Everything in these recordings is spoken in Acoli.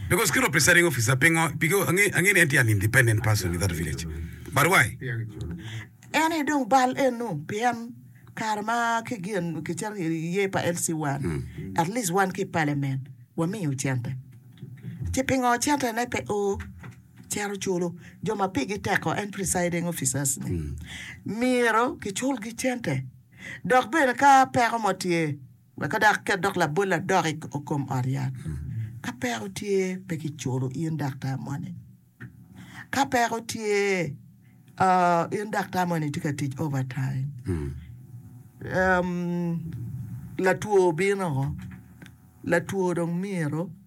Because kit representing officer pingo because ange ni en tye an independent person in that village but why? En aye dong bal eno pien kare ma ki gin ki cito ki iye pa LC one at least wan ki parliament wa miyo cente ci pingo cente ne pe o cito culo jo ma pigi teko en presiding officers ni myero ki cul gi cente dok bene ka peko mo tye Weka dok ket dok labol adok i kom ot yat. Ka peko tye, pe kiculo in daktar moni. Ka peko tye, in daktar moni tye ka tic overtime. Latwo obino, latwo dong myero.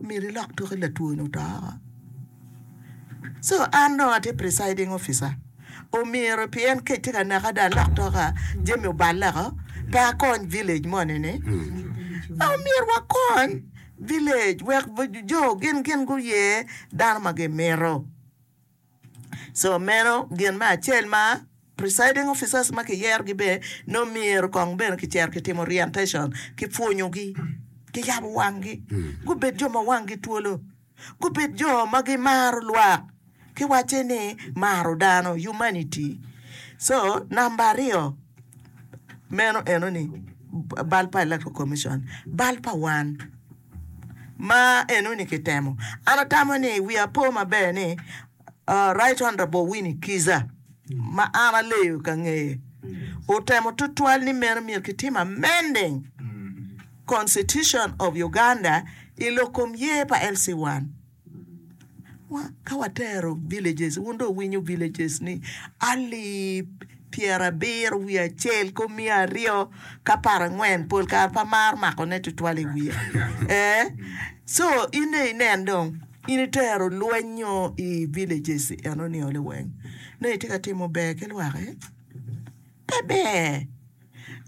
Myero ilok tok i latwoni oto oko. Co an dong atye presiding officer, omyero pien kec tye ka neka dong alok tok a, jami oballe oko pe akony village moni ni. Dong myero wakony village wek jo gin gin guye dano ma gimito. So meno gin me acel ma presiding officers ma kiyerogi be nongo myero kong bene kicito kitimo orientation, kipwonyogi, kiyabo wanggi, gubed jo ma wanggi twolo, gubed jo ma gimaro lwak ki wacce ni maro dano, humanity. So namba aryo meno enoni bal pa electoral commission, bal pa wan ma eno ni kitemo. An atamo ni wiya po maber ni Right Honourable Winnie Kiiza ma an aleyo ka ngeye otemo tutwal ni meno myero kitim amending Constitution of Uganda i lok kom ye pa LC1. Ka watero villages, wun dong wuwinyo villages ni alip pyerabiro wiye acel ki omiyo aryo ki apar angwen pol kare pe amaro mako ne tutwal i wiya ee so in dong inen dong in itero lweny nyo i villages enoni olo weng nongo itye ka timo ber ki lwak ee pe ber.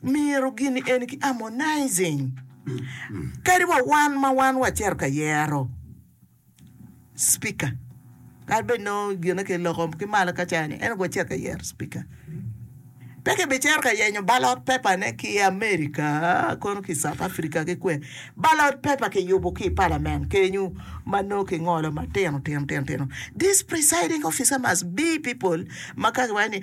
Myero gini eni ki harmonizing kadi wa wan ma wan wacito ka yero speaker kadi bed nongo gine ki loko ki malo ka ca ni en wacito ka yero speaker pe ki bi cito ka yenyo ballot paper ne ki America kono ki South Africa ki kwe ballot paper ki yubu ki parliament kenyu ma nongo ki ngolo ma tino tino tino tino this presiding officer must be people ma ka ki waco ni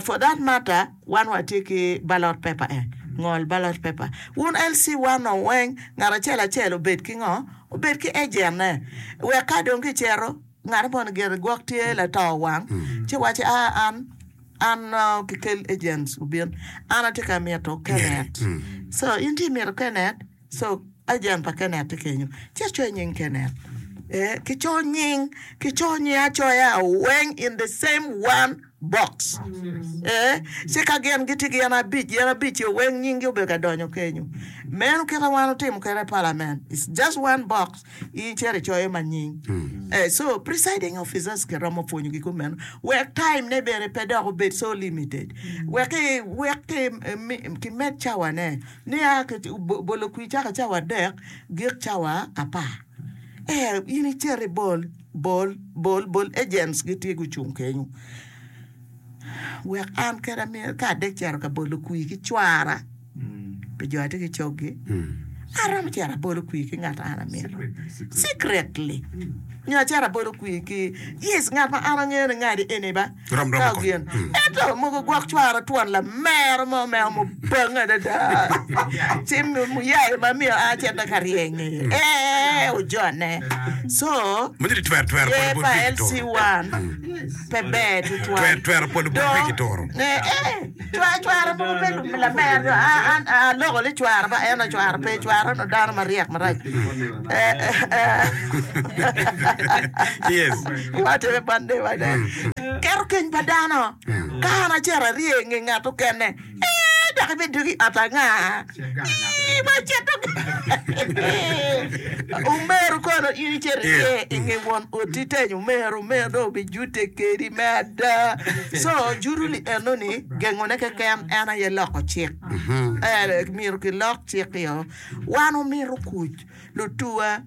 For that matter wan watye ki ballot paper eh, ngol ballot paper. Wun LC wano weng ngat acel acel obed ki ngo? Obed ki agent ne. Wek ka dong ki cito ngat mo ni gire gwok tye lato wang ci waci a an an ki kel agents obin. An atye ka mito Kenneth. So in ci imito Kenneth? Co, Agent pa Kenneth tye kenyo. Ci acoyo nying Kenneth. Ee, kicoyo nying, kicoyo nying acoya weng in the same one box. Ee, ci ka gin gitye gin abic, gin abic-cio weng nyinggi obedo ka donyo kenyo. Meno kite wan otimo kwede i Parliament, it's just one box, in icito icoyo ma nying. Ee, so presiding officers kiromo pwonyo gi kong meno, wek time ne bene pe dok obed so limited, wek ki, wek ki, kimed cawane. Nia ki bolo kwir cako cawa adek gik cawa apar. Ee, in icit ibol, bol, bol, bol, agents gitye gucung kenyo. Wek an kena myero ka adek cito ka bolo kwir ki cwara pi jo atye ki coggi, aromo cito abolo kwir ki ngat ma an amito, secretly, nyo acito abolo kwir ki, yes, ngat ma an angeyo ni ngati eni ba. Ka gin ento mogo gwok cwara twon lamero mo me omo bange adada ci muyai ma myero a cente ka ryeny i ye ojone so yer pa LC1 pe ber tutwal dong nge. Cwara mogo pe lamer nyo aloko ni cwara ma en ocwaro pe cwara no dano maryek marac watime bande bade keto keny pa dano ka an acito arye nge ngat okene ee dok ibidugi ot anga. Omero kono in icito iye inge won oti tenyo omero, omero dong obijute kedi me ada. So juruli enoni gengone keken en aye loko cik. Eh, myero kilok cik-kio. Wan omito kuc, lutuwa.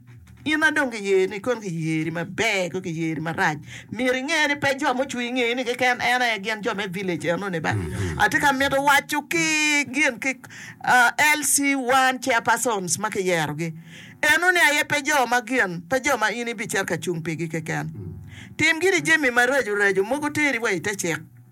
In ma dong kiyeni kong kiyeri maber kong kiyeri marac myero inge ni pe jo mucung inge ni keken en aye gin jo me village eno ni bala atye ka mito waco ki gin ki LC one chair persons ma kiyero gi eno ni aye pe jo ma gin pe jo ma in ibicito ka cung pigi keken tim giri jami maraco raco mogo teri wa ite cik.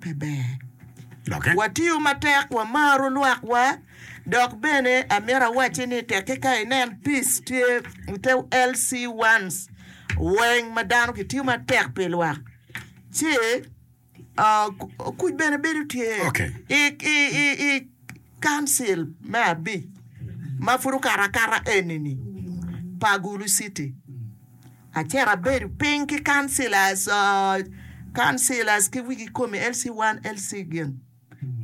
pe ber. Watiyo matek, wamaro lwakwa, dok bene amito awacci ni tekki ka inen pic tye i te LC ones weng ma dano gitiyo matek pi lwak ci kuc bene bedo tye i Council me abic ma pud okato akata eni-ni pa Gulu city. Acito abedo piny ki councillors, councillors ki wigi kome LC one, LC gin,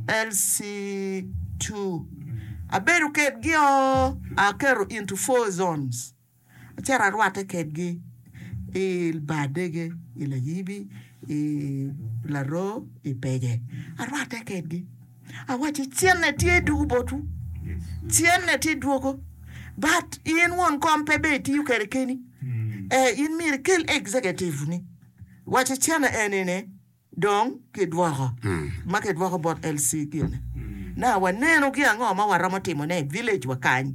LC two. Abedo kedgi o, aketo into four zones. Acito arwatte kedgi i Bar Dege, i Layibi, i Laroo, i Pege. Arwatte kedgi. awacci cene tye dugu botwu, cene tye dwogo, but in won kom pe ber itiyo kede keni, ee in myero ikel executive ni wacci cene eni ni dong kidwoko ma kidwoko bot LC gini na waneno gi ango ma waromo timone i village wa kany.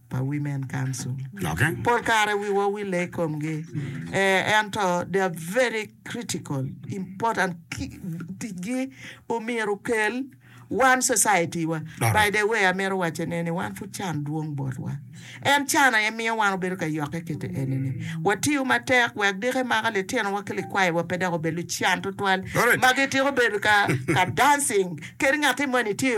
pa Women Council. Pol kare wiwa owille i komgi, ee, ento they are very critical, important, ticgi omyero okel wan society wa. By the way, amito wacce ne ni wan pud can dwong botwa. En can aye miyo wan obedo ka yokke kite eni ni watiyo matek wek diko emaka litino wa ki likwayi wa pe dok obed lucan tutwal ma gitiko bedo ka dancing kit ngati moni tye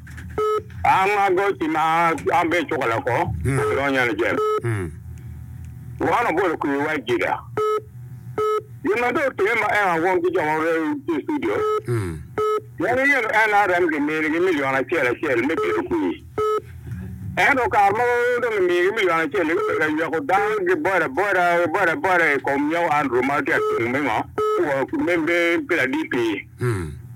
An ma goci ma an be icuka loko Adonyo yani jem Wan obolo kwi wa jida Gin ma dong otime ma en awong ki jo ma wore tye i studio Pien ingedo NRM ki mini gi million acel acel me bedo kwi Ento kare mogo dong ki migi million acel ni gubedo ka yweko dano ki boda boda boda boda ikom nyako Andrew ma tye atung me ngo me me me me laditi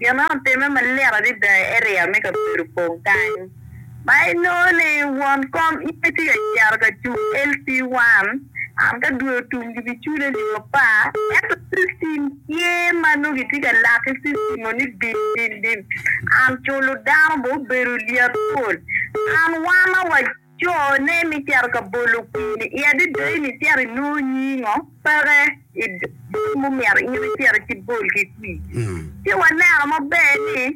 Gin ma otimme malit adada i eria me kabedo opong kany ma inongo ni won kom iye tye ka cito ka cung LC1 and ka dwe otum gibicule nio apa ento system tye ma nongo kitye ka lak ki system o ni dim dim dim and culo dano bene obedo lyet pol and wama wa Co ne mi cito ka bolo kweri i adada in i cito i nongo nyingo peke i dong mu myero in i cito ki bol ki kwi. Ci wa neno ma ber ni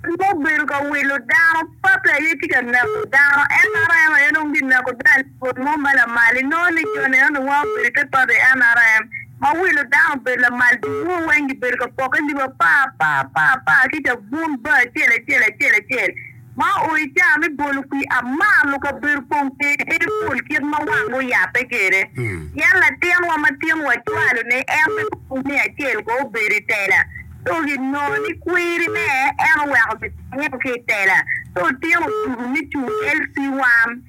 rem mo bedo ka wilo dano pake aye tye ka neko dano nrm aye nongo gi neko dano i bol mo ma lamal i nongo ni jo neno ni wa obedo i te pati nrm ma wilo dano obedo lamal dul mo weng gi bedo ka poke lib apar apar apar apar kica bun bar acel acel acel acel Ma o i caa me bolo kwir, amar lukabedo kong kede en pol kit ma wang guyabbe kede. Pien latinwa ma tin wacwalo ni en me kong miya acel ko obedo i tela, dok i nongo ni kwiri ne en oweko gitenge ki i tela, ci otino tugu me cung LC1.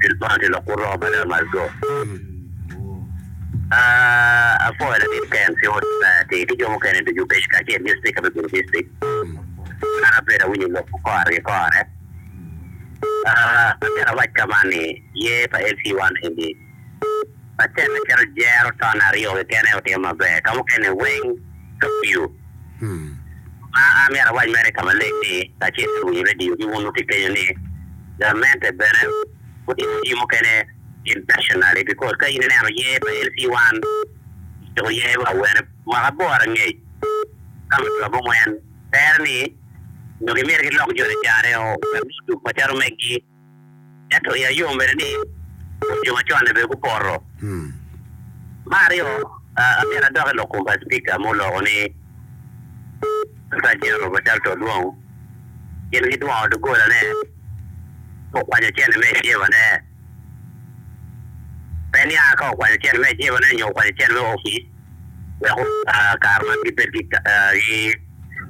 Bil Bond tye lok kur romo mada must go aah Apoyo latit KMC Old Society ki jo mukene ducu obedo kacel ki Speaker me Bur District an abedo awinyo lok ku kore ki kore aah Atera wac ka man ni Year pa LC one eni Patent me keto jero ton aryo keken aye otimo maber ka mukene weng Tokyo Ma an myero awac mere ka maleng ni, kacel ki winyo radio ki wunu ki kenyo ni, Gamente bene gutimo jami mukene intentionally because ka in ineno yer pa LC one ociko yer pa awene mwaka aboro angec ka ma dwe abongwen tere ni nyo gimiti gilok jo ni careo wek gucung macalo megi. Ento i ayom bene ni rwod jo macon-ni bene gupoto. Me aryo, myero adok i lok kom pa Cipika ma oloko ni Attorney General Machalta Odwong gin gidwongo doggolane ka okwanyo cente me ecebane. Pe niang ka okwanyo cente me ecebane nyo okwanyo cente me opic. wek otar kare ma gibed ki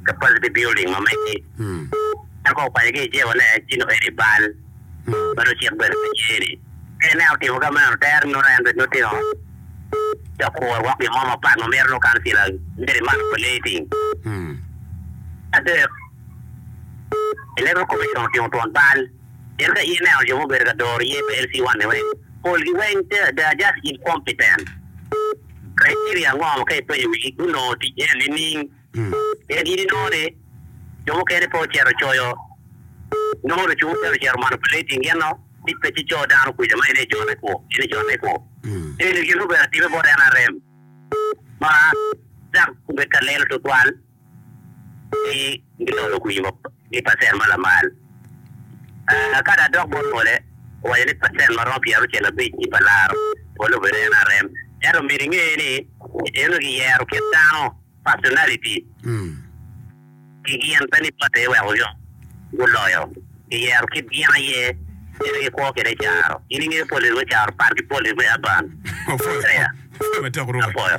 capacity building ma megi. En kono okwanyo ki i Jewa ni en cito eni bal ma nongo cik bene pe tye ni ka ineno otimo ka meno tere ni nongo en bene nongo tino ci okuro woko gin mo mapat ma mito nongo kancila miti man operating. Adek, Electoral Commission otimo twon bal pien ka ineno jo ma obedo ka doro ye pa LC1 ni weng Polgi weng they are just incompetent. Criteria ango ma ka ipenyo wigi gunongo tic iye nining? Pien in inongo ni jo mukene pe ocito coyo nongo lucu mukene ocito manipulating gin no tic pe ci coo dano kwica ma in aye ijone kwo in ijone kwo. Eni gin ma obedo atime bot nrm ma dok obedo ka lelo tutwal. Pi gitolo kwinyo ki pacen ma lamal, ka da dok bot ngole, owaco ni pacen ma romo pyeraucel abic i pa laro polo obedo NRM. Ento omyero inge ni eno giyero kit dano, personality, ki gin, pe ni party wek oyom guloyo. Giyero kit gin aye, kit ma gikwo kwede caro. In ingeyo politics me caro pat ki politics me urban? Apwoyo.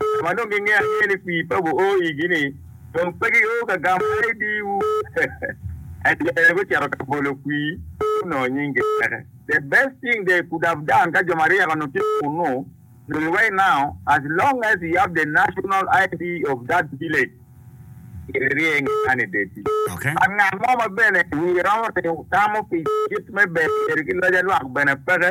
jo ma dong gingeyo angeya ni kwir pa guo igi-ni dong pe gio ka gamo ID-wu. Ento jo mene gucito ka bolo kwir ci gunongo nying giteke. The best thing they could have done ka jo maryek onongo tye kunu dong right now as long as you have the national ID of that village myero irye inge man i deti. But ngat mo ma bene wiye romo tamo pi kit me bedo bedo ki loc alwak bene peke.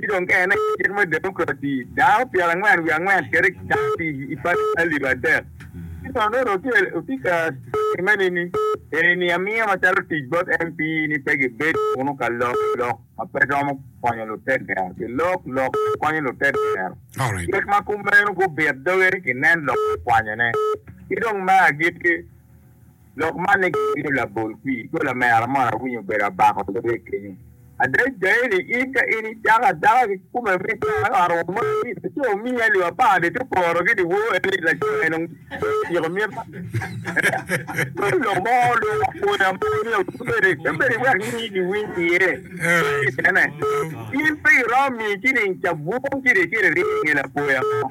Ki dong ka en aye cik me democracy, dako pyera angwen wiye angwen kede ki dako pi i pati alip adek. Ki dong nongo dong otye ka time ni ni eni ni amiya macalo tic bot MP ni pe gi bed kunu ka lok lok ma pe romo konyo lutegero ki lok lok ma konyo lutegero. Cik ma kumeno gubit doge ki nen lok ma kwanyone. Ki dong me agikki. Lok man ni gibino labol kwi i gola me Aramon awinyo obedo abako lubbe kenyo. Ada igangi ni in ka in icako adaka ki kome me dano arwo mo ni laco omiyi alip apar ni te porogi ni woo en ni laco en onge ociko mita me lok mo lok apoya mo ni obedi obedi wek nyingi giwiny iye kene in pe iromo miyo ciling cabun kidye kede ryeny nge lapoya mo.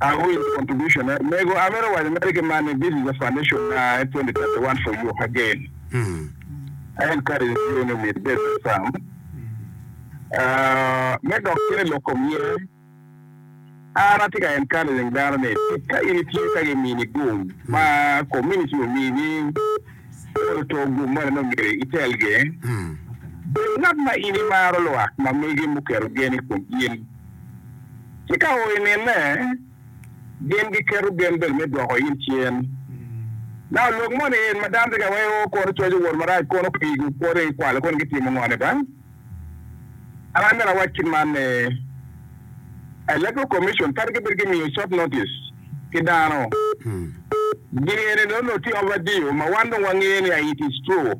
Awil contribution e. Mego amito waco mere ki man ni this is a foundation ma en 2031 for you again. I encourage you ni omyero ibed ki cam. Uh, me dok cen i lok kom yen, an atye ka encouraging dano ni tika in itye ka gimini gum ma community omini, Kor oto gum moni ma myero itelgi? Bed ngat ma in imaro lwak ma megi muketo gen i kom in. Ci ka o inene, gin giketo gen bene me dwoko in cen. Naka lok moni en ma dano tye ka weko kor coco wot marac kono pigi, kor i kwalo kono gitimo ngone ba? An bene awac kit man ni Electoral Commission twero gibedo gi miyo short notice ki dano. Ginge ni nonno tye over due ma wan dong wangeyo ni it is true.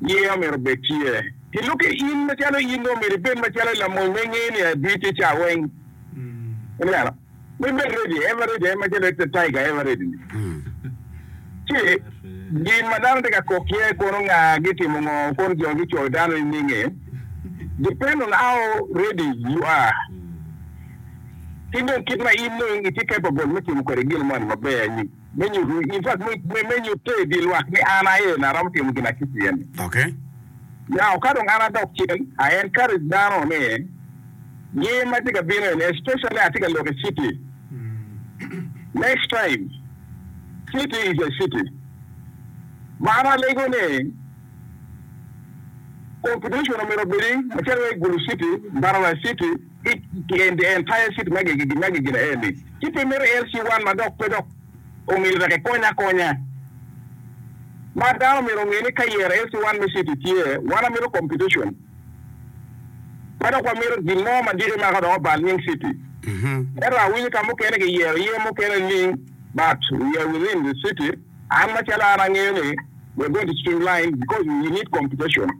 Yeya omyero obed tye. Ki lok ki in macalo in dong omyero ibed macalo lamony ma ingeyo ni adwir tye ca weng. Ineno? Me medde ni, average aye macalo Ecta Tiger average ni. Ci gin ma dano tye ka kok iye kono nga gitimo ngo kono jo gicoyo dano nininge depend on how ready you are ki dong kit ma in dong itye capable me timo kwede gin moni maber anyim. Me nyuto, in fact, me, me nyutte i dye lwak ni an aye en aromo timo gin aciki eni. Ok. Now, ka dong an adok cen, I encourage dano ni, year ma tye ka bino eni, especially atye ka lok i city, next time, city is a city. Ma an alego ni, competition omyero obedi, macalo wai Gulu city, Mbarara city, Empire City ma giginaeni ci pe mito el ci wan ma dok pe dok omyero wek ekony akonya. Mar dano omyero onge ni ka yero el ci wan me city tye wan amito competition ma dok wamito gin mo ma diki mako dok obal nying city. Ento awinyo ka mukene ki yero ye mukene ling but we are within the city an macalo an angeyo ni we are going to streamline because we need competition.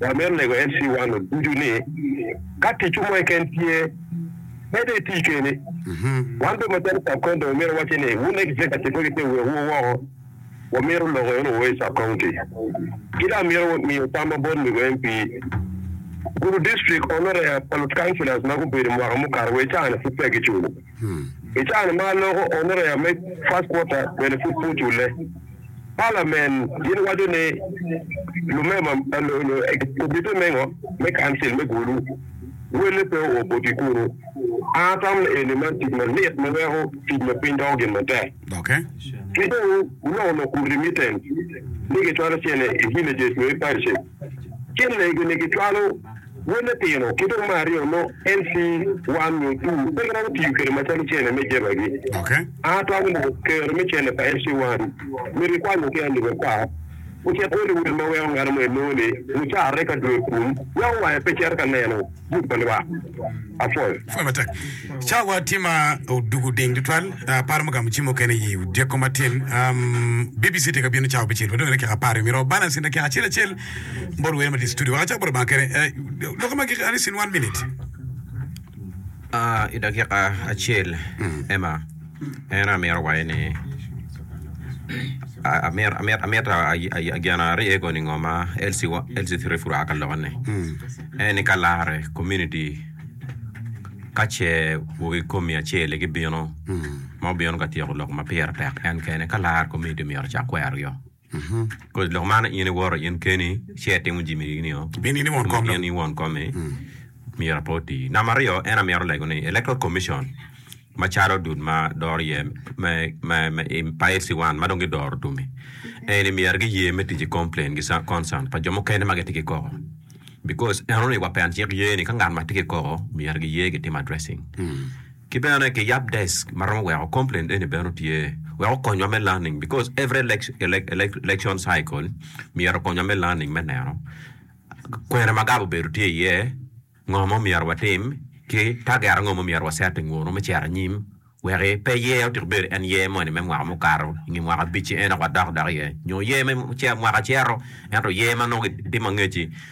Wa myero lego MC Wano ducu ni ka ticwu mo keken tye, mede iti keni. Wan bene macalo Sarkon dong myero wacce ni wun Executive wegi pe wek wu woko, wa myero loko eno wo i Sarkongti. Ki dong amyero miyo tam ma bot Mego MP Gulu District Onorea pa lut Councilors ma gubedo mwaka mukato wa i caa-ni pud peya giculo. I caro ma loko onorea me First Quarter bene pud pe ocule, Palamen gin waco ni lumema komite mengo me Council me Gulu wele pe oo boti kunu. An atamo ni eni man tic malit ma weko tic me piny doko gin matek. Ki dong guloko lok kom remittance ni gicwalo cene i villages nyo i parishes. Cen lego-ni gicwalo Wel me Pino ki dong me aryo mo LC 1 nyo 2. Pe giromo tiyo kwede macalo cene me jebagi. A Twal mo kero me cene pa LC 1 myero ikwanyo ki Andy Wekar ocit Hollywood ma weko ngat mo enongo ni lucarre ka dwe kun weko wange pe cito ka neno. Buk pa Lwak apol. Pwony matek. Cawa tye ma odwogo oding tutwal. Aparo me gamo cim mukene i odyeko matin. Um, BBC tye ka bino cawa bicel, wadong i dakika apar i myero wabal asin dakika acel acel. Bot wer ma tye i studio, wek acak bot Lubanga kene. Eh, Lok ma gik alis in one minute. Ah, i dakika acel, Emma. En aye amito waco ni amito gin arye koni ngo ma LC three pud oa ka lok ni en ni ka lare komuniti ka ce wagi komi acel aye gibino ma gubino ka tyeko lok ma pire tek en kene ka lare komuniti myero ocak kwero gi o. Kodi lok man in iwoto in keni ci itimo jami eni o, Pien in i won kom dok. in i won komi, myero ape oti. Namba aryo, en aye myero olego ni Electoral Commission macalo dul ma doro iye me me me i pa SC1 ma dong gidoro tum-mi eni myero giye me tic ki complain ki sa- concern pa jo mukene ma gitye ki koko because enoni wa PN cik ye ni ka ngat ma tye ki koko myero giye gitim addressing. Ki bene ki yab desk ma romo weko complaint eni bene otye wek okonywa me learning because every election cycle myero okonywa me learning me neno kwene ma gab obedo tye iye, ngo ma omyero watim ki target ango ma omyero wa set i ngunu me cito anyim weki pe year otiku bedo en year moni me mwaka mukato nge mwaka abic-ci en aye wadok dok iye nyo year me mwaka cito ento year ma nongo itimo angec-ci.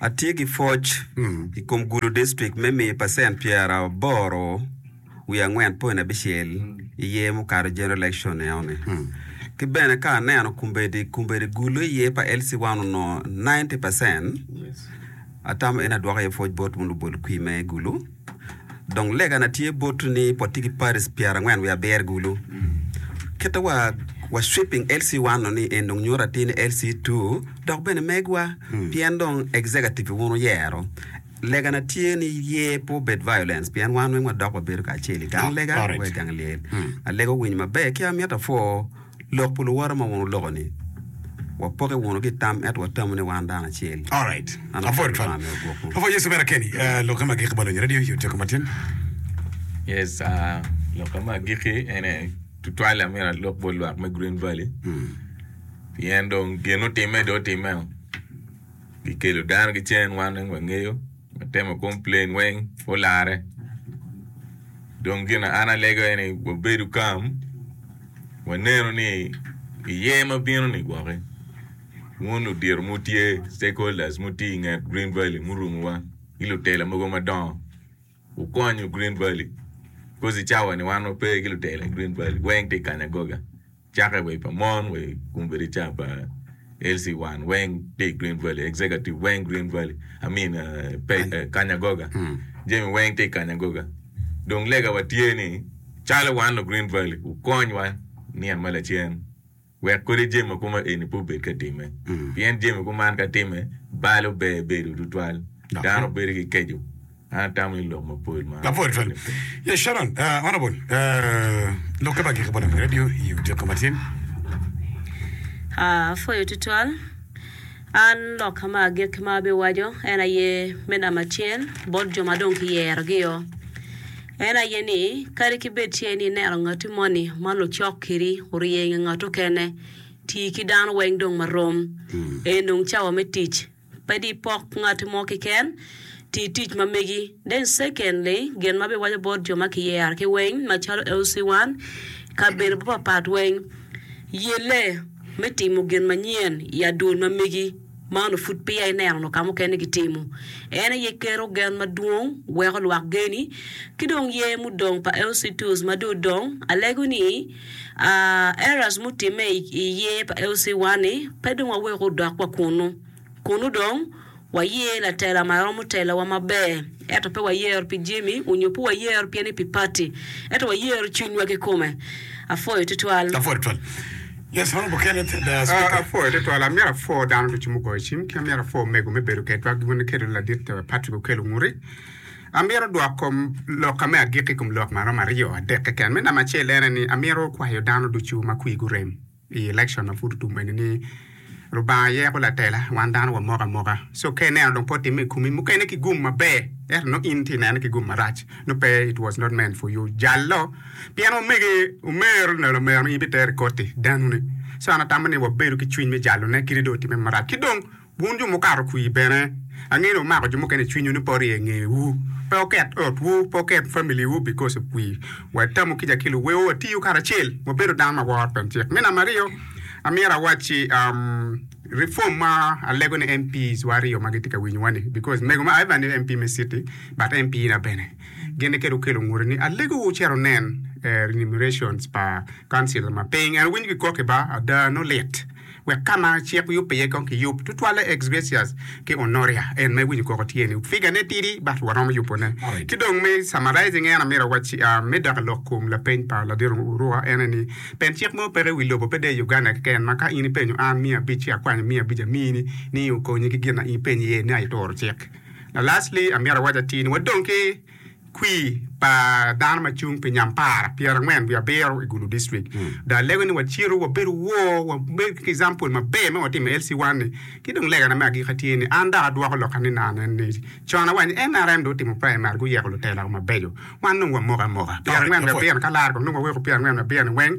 Atye ki pwoc i kom gudo distrik me miyo pacent pyeraboro wiye angwen point abicel i yer mukato, general election, enoni. Ki bene ka aneno kombeddi, kombeddi gulo i yer pa LC1 onongo ninety percent, atamo en adwoko iye pwoc bot Munu Bol Kwime Gulu. Dong legana tye botwu ni potti ki Paris pyerangwen wiye aber gulu. Kite wa wa sweeping LC1 no ni en dong nyuto atir ni LC2 dok bene megwa pien dong executive wun wuyero. Legana tye ni ye pe obed violence pien wan weng wadok wabedo kacel i gang lega wa i gang lyel. Alega owinyo maber ki amito pwo Lok pi luwote ma wun wuloko-ni, Wapokke wunu ki i tam, ento watamo ni wan dano acel. Alright. An Apwoyo akwano twal. Lubanga me ogwok mo. Apwoyo Yesu mere keni. Ah, Lokke me agikki balonyo radio i otyeko matin. Yes, ah, lokke me agikki en aye tutwal amyero alok bot lwak me Green Valley. Pien dong gin otimme dong otimmeo. Gikelo dano ki cen wan weng wangeyo. Watemo complain weng olare dong gin an alego aye ni wabedu calm wanenu ni i year ma bino ni gwoki wun ludito mutye stakeholders muti i nget Green Valley murumu wa ki lutela mogo madongo wukonyu Green Valley coz i cawa ni wan wape ki lutela i Green Valley weng tye i Kanyagoga. Cake wa i pa mon wa i kum bedo-ca pa Elsie Wan weng tye i Green Valley, Executive weng Green Valley, I mean Kanyagoga, jami weng tye i Kanyagoga. Dong lega wa tye ni calo wan lu Green Valley wukony wa nino ma lacen wek kodi jami ma kuma eni pe obed ka timme pien jami kuman ka timme balo ber bedo tutwal dano bedo ki keco Apwoyo tutwal. An lok ma agikki ma abiwaco en aye me namba acel bot jo ma dong kiyerogi-o, en aye ni kadi ki bed ce ni ineno ngatti moni ma lucok kiri orye i nge ngat mukene, ti ki dano weng dong marom. Eni dong cawa me tic Ped ipok ngat mo kiken, ti tic ma megi. Deng secondly, gin ma biwaco bot jo ma kiyero ki weng macalo LC1, kabedo mapapat weng, yelle me timo gin manyen i adwol ma megi ma onongo pud peya ineno onongo ka mukene gitimo. En aye keto gen madwong, weko lwak geni, ki dong yer mudong pa LC2s ma dong odong, alego ni, Errors mutimme i year pa LC one ni pe dong wawek odok wa kunu. Kunu dong wayear latela ma romo telowa maber eto pe wayear pi jemi onyo pe wayear pien ni pi party eto wayear cwinywa kikome. Afoyo tutwal. Afoyo tutwal. Yes mano mukene speaker. Afoyo tutwal, amyero apwo dano ducu mugoyo cim, ki amyero apwo omego me bedo kedwa, gin weny iketo ni ladit Patrick Okello Nguri, Amito dwok kom lokka me agikki i kom lok maromo aryo adek keken. Me namba acel en aye ni amito kwayo dano ducu ma kwigi orem i election ma pud otum eni ni Lubanga aye yako latela, wan dano wamoko amoka. So ka ineno dong pe otimme i komi, mukene ki gum maber ento nongo in tye inene ki gum marac, nongo pe it was not meant for you. Jal lo pien omege omero neno lamero ni in bitero i koti danune. So an atamo ni wabedo ki cwiny me jalone kadi dong otimme marac. Ki dong. Wun jo mukato kwir bene, angeyo ni wumako jo mukene i cwinywu ni pe wurye ngewu. Pe wuket otwu, pe wuket familiwu bikoc i kwir. Wa itamu kica ki luwewo, watiyu karacel, wabedu dano ma woro pien cik. Me namba aryo, amyero awacci Reform ma alego ni MPs wa aryo ma gitye ka winyowa ni, because mego ma Ivan ni MP me city but MP na bene, gin ni kit wukelo ngute ni alego wucit wunen remunerations pa councillor ma piny, en owinyo gikok ki ba, ada nongo lit. wek ka ma cik yubbe iye kong kiyub, tutwalle ex gratia ki honoria, en ma iwinyo koko tye ni, figure-ne tidi but waromo yubone. Ki dong me summarizing en amito awacci me dako lok kom lapeny pa ladito Uruka en aye ni, pen cik mo peke iwi lobo pe dee i Uganda keken ma ka in ipenyo an miya abic ci akwanyo miya abic amini ni okonyi ki gin na in ipenyo iye ni aye ituro cik. La lastly amito awac atir ni wadong ki. kwir pa dano ma cung pi nyampara pyerangwen wiye abiro i Gulu District. Dong alego ni wacito wabedo wor, wabedo ki example maber ma watimo i LC1 ni. Ki dong legana me agika tye ni an dok adwoko lok ni naa nen ni con awaco ni nrm dong otimo primary guyeko lutela mabeco wan dong wamoko amoka pyerangwen wiye abiro-ni ka laro kong dong waweko pyerangwen wiye abiro-ni weng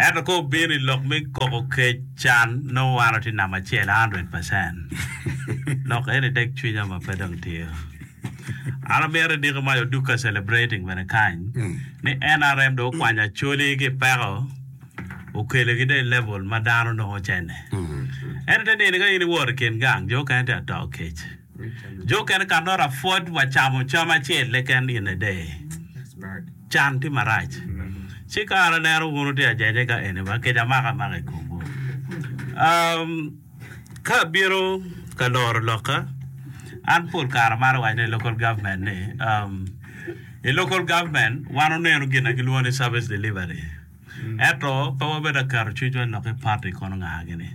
Ento ka obino i lok me koko kec, can, nongo wan watye namba acel hundred percent. Lok eni tek cwinya ma pe dong tiyo. An amito idiko mac Oduka Celebrating bene kany ni nrm dong okwanyo Acholi ki peko okelo gi dong i level ma dano nongo cene. Ento te nini ka in iwot i kin gang jo okene tye ato kec. Jo okene ka nota pwod wa camo cam acel keken in a day. Can tye marac. Ci kare aneno wun wutye ajaje ka eni ba kica mako amaka i komwu. Um, ka abino ka loro lokka, an pol kare amaro waco ni i local government ni, um, i local government wan wuneno gin ma gilwongo ni service delivery. Ento pe wabed aketo cwinywa lok ki party kono nga gini.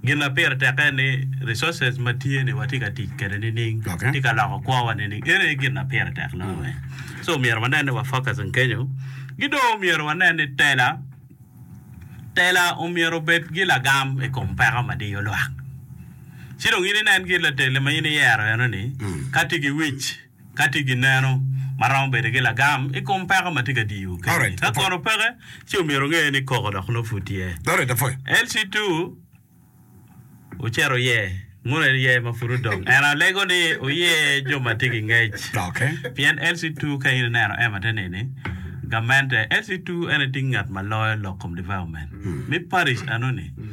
Gin ma pire tek en ni resources ma tye ni watye ka tic kwede nining, tye ka loko kwo wa nining, eno aye gin ma pire tek loyo weng. So myero wanen ni wa focusing kenyo. Ki dong omyero wanen ni tela, tela omyero obed ki lagam i kom peko ma diyo lwak. Ci dong in inen kit latelle ma in iyero eno ni ka tye ki wic, Ka tye gineno ma romo bedo ki lagam i kom peko ma tye ka diyo keni, ka kono peke, ci omyero onge ni koko dok nongo pud tye. LC2 Ocito oye mono en iye ma pud odong? En alego ni oye jo ma tye ki ngec. Pien LC2 Ka in ineno Emma te nini, gamente LC2 en ating ngat ma loyo lok kom development me parish anoni.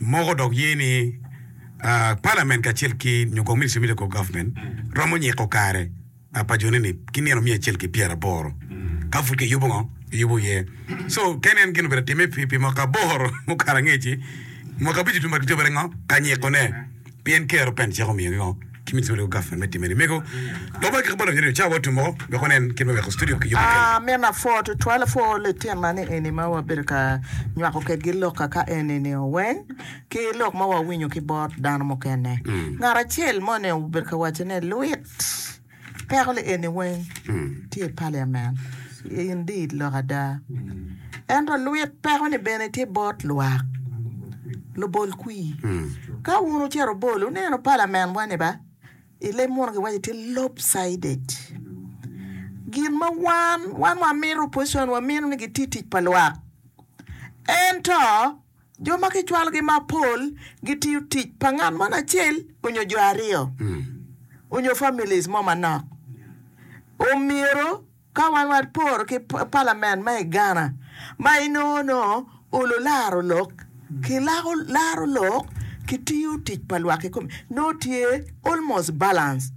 Moko dok ye ni Palament kacel ki nyo kong Ministry me Local Government romo nyiko kare pa jone ni ki nino miya acel ki pyera aboro ka pud ki yubo ngo ki yubo iye so ken en gin obedo time pi mwaka aboro mukato angeci mwaka abic otum bad ki cobere ngo ka nyiko ne Pien Ker open cik omiyo gingo ki midito ma riwo gavman me time ni mego lobo ki kabolonyo ni ocawa otum woko wek onen kit me weko studio ki yubo kec. Amina pwoo tutwal pwoo lityen ma ni eni ma wabedo ka nywako kedgi lok kaka eni ni o weng ki lok ma wawinyo ki bot dano mukene ngat acel moni obedo ka waco ne luit Peko ni eni weng tye i paliament i Indeed lok ada. Ento lwit peko ni bene tye bot lwak lubol kwi. Ka wun wucito bol wuneno paliament wa ni ba i leb muno ki waco tye lopsided. Gin ma wan, wan wa mito opposition wa mito ni giti tic pa lwak. Ento. Jo ma kicwalogi mapol gitiyo tic pa ngat mo acel onyo jo aryo onyo families mo manok. Omyero ka wan waporo ki palament ma i Ghana ma inongo no olu laro lok ki lako laro lok ki tiyo tic pa lwak kikome nongo tye almost balance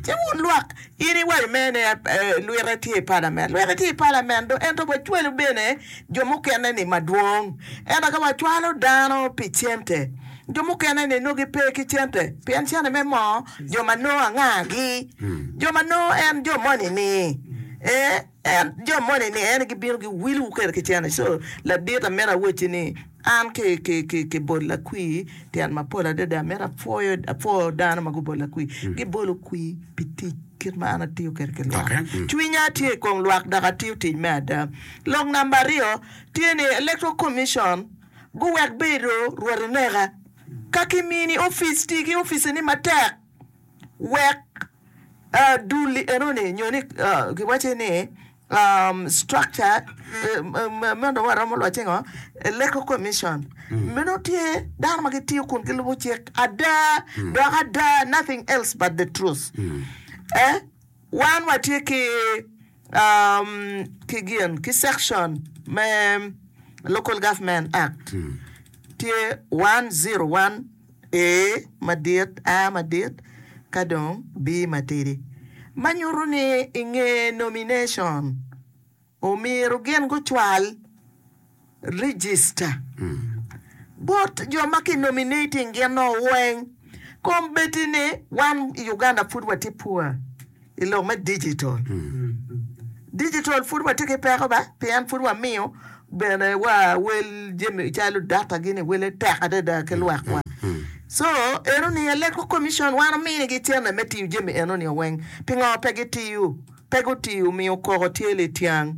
ci wun lwak In iwaco mere ni lwite tye i palament, lwite tye i palament do, ento wacwalo bene jo mukene-ni madwong. Ento ka wacwalo dano pi cente, jo mukene-ni nongo gipe ki cente, pien cente me moo jo ma nongo angagi? Jo ma nongo en jo moni-ni? Ee, En jo moni ni en gibino gi wil wukere ki cene so ladit amito awacci ni an ki ki ki ki bol lakwi tyen mapol adada amito apwoyo apwoo dano ma gubol lakwi gibolo kwi pi tic kit ma an atiyo kede ki lwak cwinya tye i kom lwak dok atiyo tic me ada lok namba aryo tye ni electoral commission guwek bedo rwot ineka ka kimini opic ti ki opice ni matek wek dul enoni nyo ni giwaco ni structure man dong waromo lwacce ngo electoral commission meno tye dano ma gitiyo kun gilubo cik ada dok ada nothing else but the truth wan watye ki ki gin ki Section me Local Government Act tye 101 A madit, A madit ka dong B matidi, ma nyutu ni i nge nomination omyero gin gucwal. Register bot jo ma ki nominating gin o weng. Kom bedi ni wan i Uganda pud wa tye poor i lok me digital. Digital pud wa tye ki peko ba pien pud wa miyo bene wa wel jami calo data gini wele tek adada ki lwak wa. So eno ni electoral commission wan omini gi cene me tiyo jami eno ni o weng. Pingo pe gi tiyo? pe gutii omiyo koko tye lityang.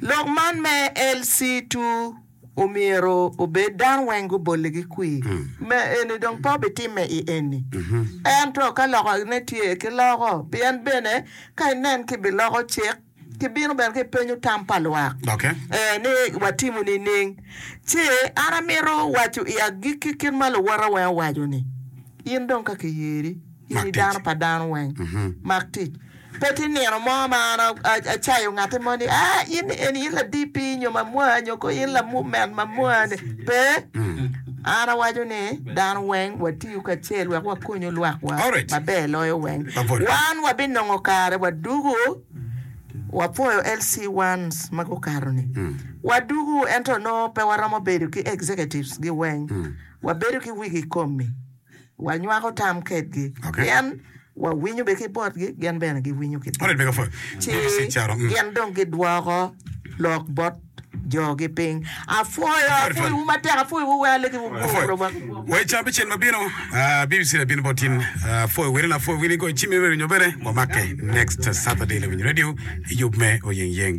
Lok man me LC2 omyero obed dano weng gubolle ki kwir. Me eni dong pe obitimme i enni. Ento ka lokane tye, kiloko. Pien bene ka inen ki biloko cik, ki bino bene ki penyo tam pa lwak, ee, ni watimo nining? Ci an amito waco i agikki kit ma luwota weng owaco ni, In dong ka kiyeri. in i dano pa dano weng, mak tic. Pe tye nino mo ma an acayo ngatte mo ni, aa, in eni in la-DP nyo mamua nyo koo in la-Movement mamua ni. Pe, an awaco ni dano weng watiyu kacel wek wakonyu lwakwa maber loyo weng. Wan wabinongo kare wa dugu, wapwoyo LC ones ma gukato ni, wa dugu ento nongo pe waromo bedo ki Executives gi weng, wabedo ki wigi komi. wanywako tam kedgi, pien wawinyo bene ki botgi, gin bene giwinyo ki biwa, ci gin dong gidwoko lok bot jogi piny. Apwoyo, apwoyowu matek, apwoyowu, wek alegiwu guo bot omego.